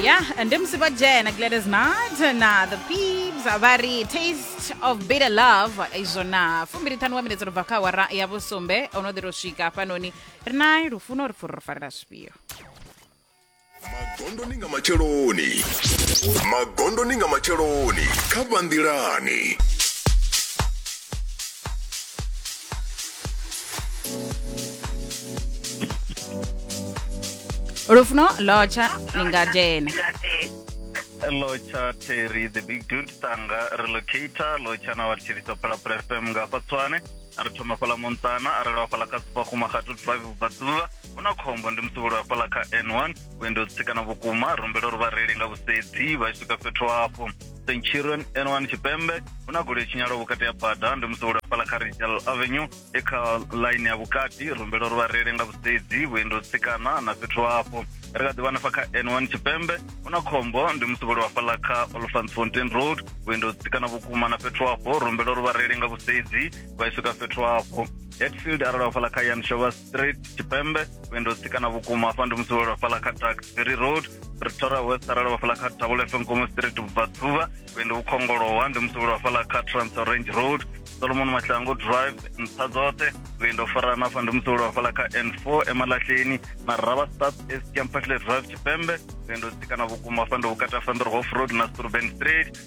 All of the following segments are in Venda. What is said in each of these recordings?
ya ndi musi vho dzhena gladys mart na the pibs vha ri taste of bitter love izwo na fumbili ṱhanu wa minetse ro bva kha wara ya vhusumbe o no ḓi ro swika hafhanoni ri na lufuno ri pfuri ro farela zwifhio magondo ni nga matsheloni magondo ni nga matsheloni kha vhanḓilani lufuno lotsha lingajena lotsha terry the big dude tanga relocator lotsha na wa tshiriso phala phala fm nga fa tswane a ri thoma fhala montsana a ri lwa fhala ka supa kuma ga tu five ba tsula una khombo ndi musubulu wa fhala ka n1 wendo tsikana vhukuma rumbelo ri vha reli nga vhusedzi vha swika fhethu hafho St. Children N1 Tshipembe hu na goloi tshinyalaho vhukati ha bada ndi musi wo lafhala kha Rachel Avenue e kha line ya vhukati rumbelo uri vha reile nga vhusedzi vhuendi ho tsikana na fhethu hafho ri kha ḓi vhanafha kha N1 Tshipembe hu na khombo ndi musi vho lafhala kha Olfantsfontein Road vhuendi ho tsikana vhukuma na fhethu hafho rumbelo uri vha reile nga vhusedzi vha swika fhethu hafho Hatfield arali vha fhala kha Yan Shovas street tshipembe vhuendi ho tsikana vhukuma hafha ndi musi wo lwa fhaḽa kha taxbury road pretoria west arali wa fhaḽa kha tavule fm komo street vhubvaḓuvha vhuendi vhu khongolowa ndi musi wo lwa fhaḽa kha transorange road solomon mahlango drive nṱha dzoṱhe vhuendi ho farana hafha ndi musi wo lwa fhaḽa kha n four emalahleni na rava start escampatle drive tshipembe vhuendi ho tsikana vhukuma hafha ndi vhukati ha fanderhof road na sturban street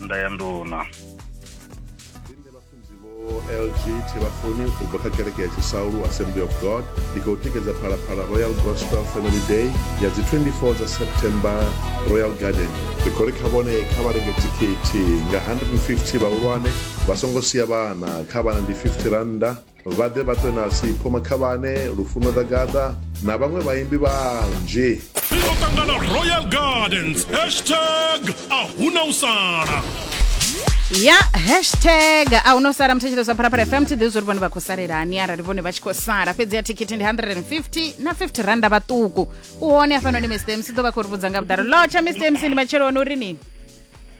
nnḓa ya nduna lg thivhafuni u bva kha kereke ya tshisaulu assembly of god ndi khou tikedza phalaphala royal gospel family day ya dzi 24 dza september royal garden ri khou ri kha vhone kha vha renge thikhithi nga 150 vhahulwane vha songo sia vhana kha vhana ndi 50 rannda Vha ḓe vha ṱwe na Sipho Makhavhane, Lufuno Ḓagaḓa na vhaṅwe vhaimbi vhanzhi. Ri ḓo ṱangana Royal Gardens hashtag a huna u sala. ya hashtag a hu no sala muthetshedzo sa pharapara fm thi ḓivhi zwo ri vhone vha khou salelani arali vhone vha tshi khou sala fhedzi ya thikhithi ndi 150 na 50 randa vhaṱuku u hone hafhanoni mr mc ḓo vha khou ri vhudza nga vhuḓalo lotsha mr mc ndi matsheloni uri nini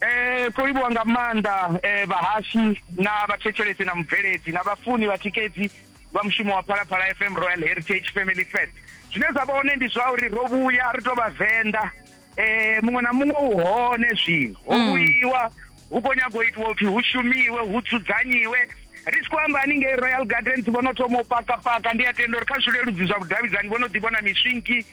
Eh, kho livhuwa nga maanḓa eh, vhahashi na vhathetshelesi na mubveledzi na vhafuni vhatikedzi vha mushumo wa phalaphala fm royal heritage family fest zwine zwa vha hone ndi zwa uri ro vhuya ri to vhavenḓa eh, muṅwe na muṅwe u hone zwino ho vhuyiwa hu khou nyago itiwa upfi hu shumiwe hu dzudzanyiwe ri tshi khou amba haningei royal gardens vho no thoma u pakapaka ndi a tenda uri kha zwileludzi zwa vhudavhidzani vho no ḓi vhona miswinki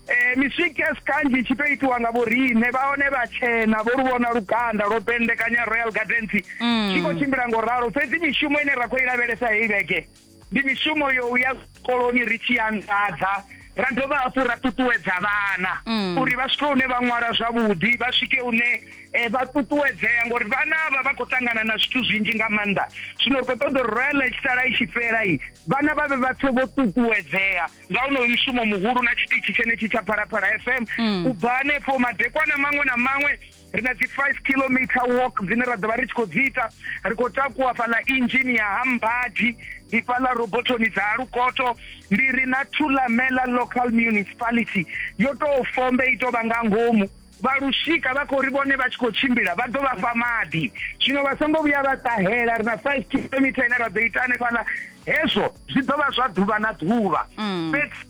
eh miswikes kanzhi tshi to itiwa nga vhoriṋe vha hone vha tshena vho lu vhona lukanda lwo pendekanya royal gardens mm. tshi khou tshimbila ngo ralo fhedzi mishumo ine ra khou i lavhelesa heyi vhege ndi mishumo yo u ya koloni ri tshi anḓadza ra dovha hafhu ra ṱuṱuwedza vhana mm. uri vha swike hune vha ṅwala zwavhuḓi vha swike hune um vha ṱuṱuwedzea ngori vhana vha vha khou ṱangana na zwithu zwinzhi nga maanḓa zwino ri khou ṱoḓa uri royal i tshi sala i tshi fhelai vhana vha vhe vha pfe vho ṱuṱuwedzea nga onoyu mushumo muhulu na tshiṱitshi tshenetshi tsha phalaphala fm mm. u bva hanefho madekwana maṅwe na maṅwe ri na dzi-five kilometer walk dzine ra ḓo vha ri tshi khou dzi ita ri khou takuwa fhaḽa injini ya hambadi ndi fhaḽa robotoni dza lukoto ndi ri na thulamela local municipality yo tou fombe i tou vha nga ngomu vha lushika vha khou ri vhone vha tshi khou tshimbila vha ḓo vha fha maḓi zwino vha songo vhuya vha ṱahela ri na five kilometre ine ra ḓo ita hanefhaḽa hezwo zwi ḓo vha zwa ḓuvha na ḓuvha mm. fhedzi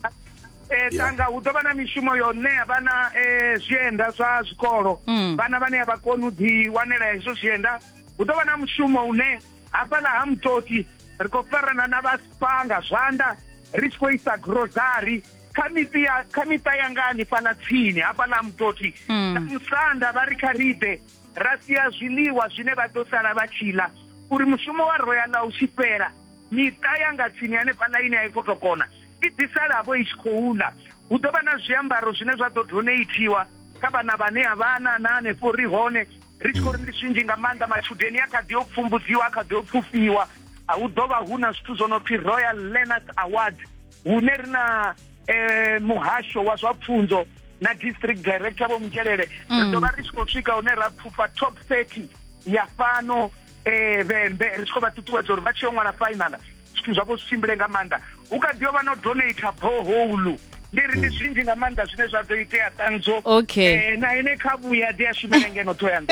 eh, tanga hu ḓo vha na mishumo yo ṋea vhana eh, zwienda zwa zwikolo mm. vhana vhane a vha koni u ḓi wanela hezwo zwienda hu ḓo vha na mushumo une hafhaḽa ha mutoti ri khou farana na vha sipanga zwanḓa ri tshi khou isa grosari kha miṱi ya kha miṱa yanga hanefhaḽa tsini hafhaḽa mutoti hmm. na musanda vha ri kha riḓe ra sia zwiḽiwa zwine vha ḓo sala vha tshi ḽa uri mushumo wa royala u tshi fhela miṱa yanga tsini hanefhaḽa ine a i fotokona i ḓisalavo i tshi khou ḽa hu ḓo vha na zwiambaro zwine zwa ḓo doneithiwa kha vhana vhane a vhana na hanefho ri hone ri tshi khou ri ndi zwinzhi nga maanḓa matshudeni a kha ḓi yo pfumbudziwa a kha ḓi yo pfufhiwa hu ḓo vha hu na zwithu zwo no pfi royal learners award hune ri na eh, muhasho wa zwa pfunzo na district director vho mutshelele ri ḓo vha ri tshi khou swika hune ra pfufha top 30 ya fhano eh, vhembe ri tshi khou vha ṱuṱuwedza uri vha tshi yo ṅwala fainala zwithu zwavho zwi tshimbile nga maanḓa hu kha ḓi yo vha no donata boholu ndi ri ndi zwinzhi nga maanḓa zwine zwa ḓo itea ṱanzo okay eh, na ine kha vhuya ḓi a shumela ngeno thoyand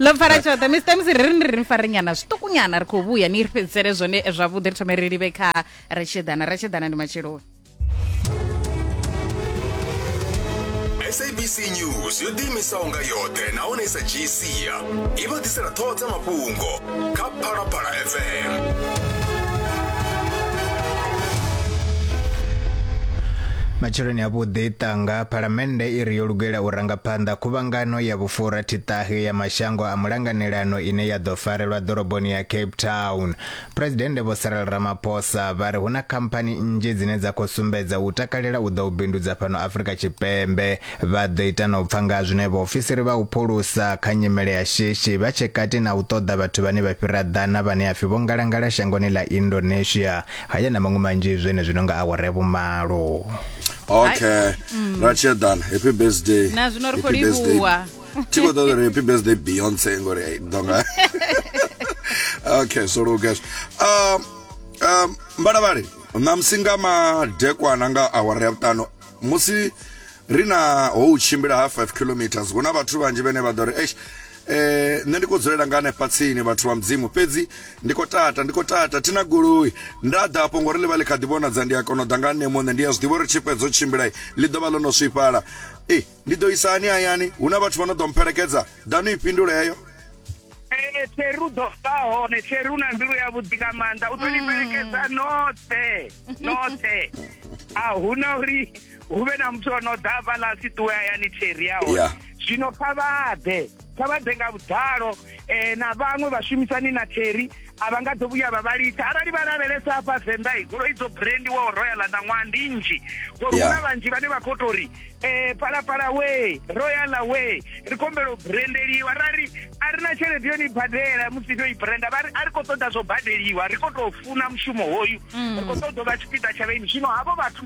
lo fara tshoṱhe mr mc ri ri ndi ri fare nyana zwiṱukunyana ri khou vhuya ni ri fhedzisele zwone zwavhuḓi ri thome ri livhe kha ratshedana ratshedana ndi matsheloni sabc news yo ḓiimisaho nga yoṱhe nahone i sa dzhii sia i vha ḓisela ṱhoho dza mafhungo kha phalaphala fm matsheloni avhuḓi ṱanga phalamennde i ri yo lugela u ranga phanḓa khuvhangano ya vhufura thiṱahe ya mashango a mulanganelano ine ya ḓo farelwa ḓoroboni ya cape town Phresidennde Vho Cyril Ramaphosa vha ri hu na khamphani nnzhi dzine dza khou sumbedza u takalela u ḓa u bindudza fhano Afrika Tshipembe. Vha ḓo ita na u pfa nga ha zwine vhaofisiri vha u phulusa kha nyimele ya shishi vha tshe kati na u ṱoḓa vhathu vhane vha fhira ḓana vhane a pfi vho ngalangala shangoni ḽa Indonesia, haya na maṅwe manzhi zwenezwino nga awara ya vhumalo. okay ra tshi eḓana happy birthday na zwino ri khou livhuwa Ti khou ṱoḓa uri happy birthday Beyonce ngori ai ḓo nga. Okay, so Lucas. Um um mbalavhali ṋamusi nga madekwana nga awara ya vhuṱanu musi ri na ho u tshimbila ha 5 kilometers hu na vhathu vhanzhi vhene vha ḓo ri eish eh nṋe ndi khou dzulela nga hanefha tsini vhathu vha mudzimu fhedzi ndi khou tata ndi khou tata thina goloi nda ḓa afho ngori ḽi vha ḽi kha ḓi vhonadza ndi a kona u ḓa nga nṋe muṋe ndi a zwi ḓivha uri tshifhedzo tshimbila ḽi ḓo vha ḽo no swifhala e Ndi ḓo isa hani hayani? Hu na vhathu vha no ḓo mpfelekedza? Ḓanu i fhindule heyo. Ee, Terry u ḓo vha hone. Terry u na mbilu ya vhuḓi nga maanḓa. U ḓo ni fhelekedza noṱhe. Noṱhe. A hu na uri hu vhe na muthu o no ḓa hafhaḽa a si ṱuwe hayani Terry a hone. Yeah. Zwino kha vha ḓe. kha vha ḓe nga vhuḓalo um na vhaṅwe vhashumisani na theri a vha nga ḓo vhuya vha vha litha arali vha lavhelesa hafha venḓa i goloi dzo brandiwaho royal na ṅwaha ndi nnzhi ngori hu na vhanzhi vhane vha khou tou ri um palapala wee royal wee ri khombelo brandeliwa ra ri a ri na tshelede yo ni badela musi ndo i branda vha ri a ri khou ṱoḓa zwo badeliwa ri khou tou funa mushumo hoyu mm. ri khou ṱoḓa u vha tshipiḓa tsha vhaini zwino havho vhathu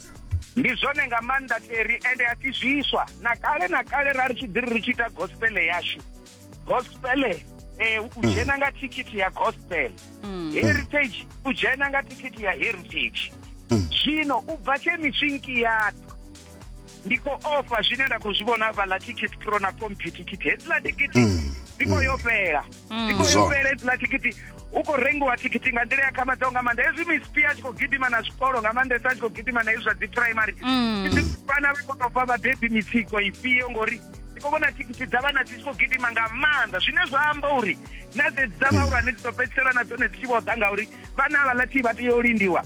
ndi zwone nga maanḓa teri ende a si zwiswa na kale na kale ra ri tshi ḓiri ri tshi ita gospele yashu gospele um u dzhena nga thikhithi ya gospel mm. heritage u dzhena nga thikhithi ya heritage mm. zwino u bva tshe miswinki yatu ndi khou ofha zwine nda khou zwi vhona vhaḽa ticket pro na compy ticket hedziḽa ticket mm. ndi khou yo fhela mm. ndi khou yo fhela idzila thikhithi u khou rengiwa thikhithi nga nḓila ya khamadzaho nga maanḓa hezwi mispi a tshi khou gidima na zwikolo nga maanḓesa a tshi khou gidima na hezwi zwa dzi primary vhana vha khou tou fha vhabebi mitsiko ifhio ngori ndi khou vhona thikhithi dza vhana dzi tshi khou gidima nga maanḓa zwine zwa amba uri na dzedzi dza vhahulwane dzi ḓo fhedzisela na dzone dzi tshi vho ḓa ngauri vhana havhaḽa thi vha tea u lindiwa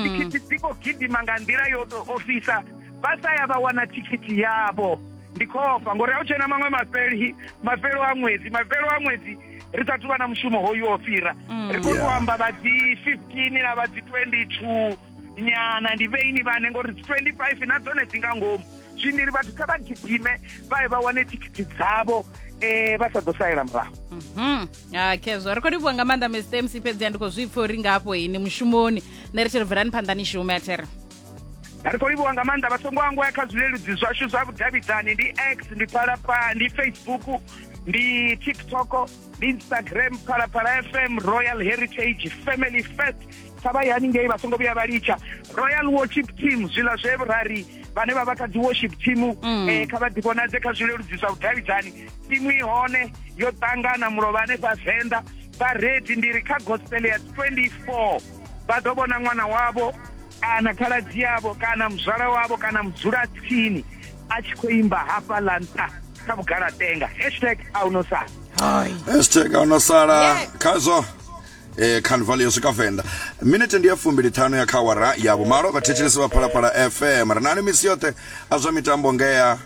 thikhithi dzi khou gidima nga nḓila yo tou ofhisa vha sa ya vha wana thikhithi yavho ndi khofha ngori a u tshena maṅwe mafheli mafhelo a ṅwedzi mafhelo a ṅwedzi ri sa thu vha na mushumo hoyu o fhira mm. ri khou yeah. amba vha dzi fifteen na vha dzi twenty two nyana ndi vheini vhane ngori dzi twenty five na dzone dzi nga ngomu zwino ri vhathu kha vha gidime vha ye vha wane thikhithi dzavho um vha sa ḓo salela murahu mhm. ah, khezwo ri khou livhuwa nga maanḓa mr mc fhedzi a ndi khou zwi pfha uri ngafho ini mushumoni nṋe ri tshi ri bvelani phanḓa ni shume a there ri khou livhuwa nga maanḓa vha songo angwaya kha zwileludzi zwashu zwa vhudavhidzani ndi x ndi phalaphala ndi facebook ndi tiktok ndi instagram phalaphala fm royal heritage family first kha vha yani ngei vha songo vhuya vha litsha royal worship team zwiḽa zwe rari vhane vha vha kha dzi worship team mm. eh, kha vha ḓivhonadze kha zwileludzi zwa vhudavhidzani timu i hone yo ṱangana mulovha hanefha venḓa vha redi ndi ri kha gospel ya 24 vha ḓo vhona ṅwana wavho kana khaladzi yavho kana muzwala wavho kana mudzulatsini a tshi khou imba hafha ḽa nṱha kha vhugalatenga hashtag a u no sala hashtag a u no sala khazwo eh carnival yo swika venḓa minete ndi ya fumbili ṱhanu ya kha wara ya vhumalo vhathetshelesi vha phalaphala fm ri nani misi yoṱhe a zwa mitambo ngea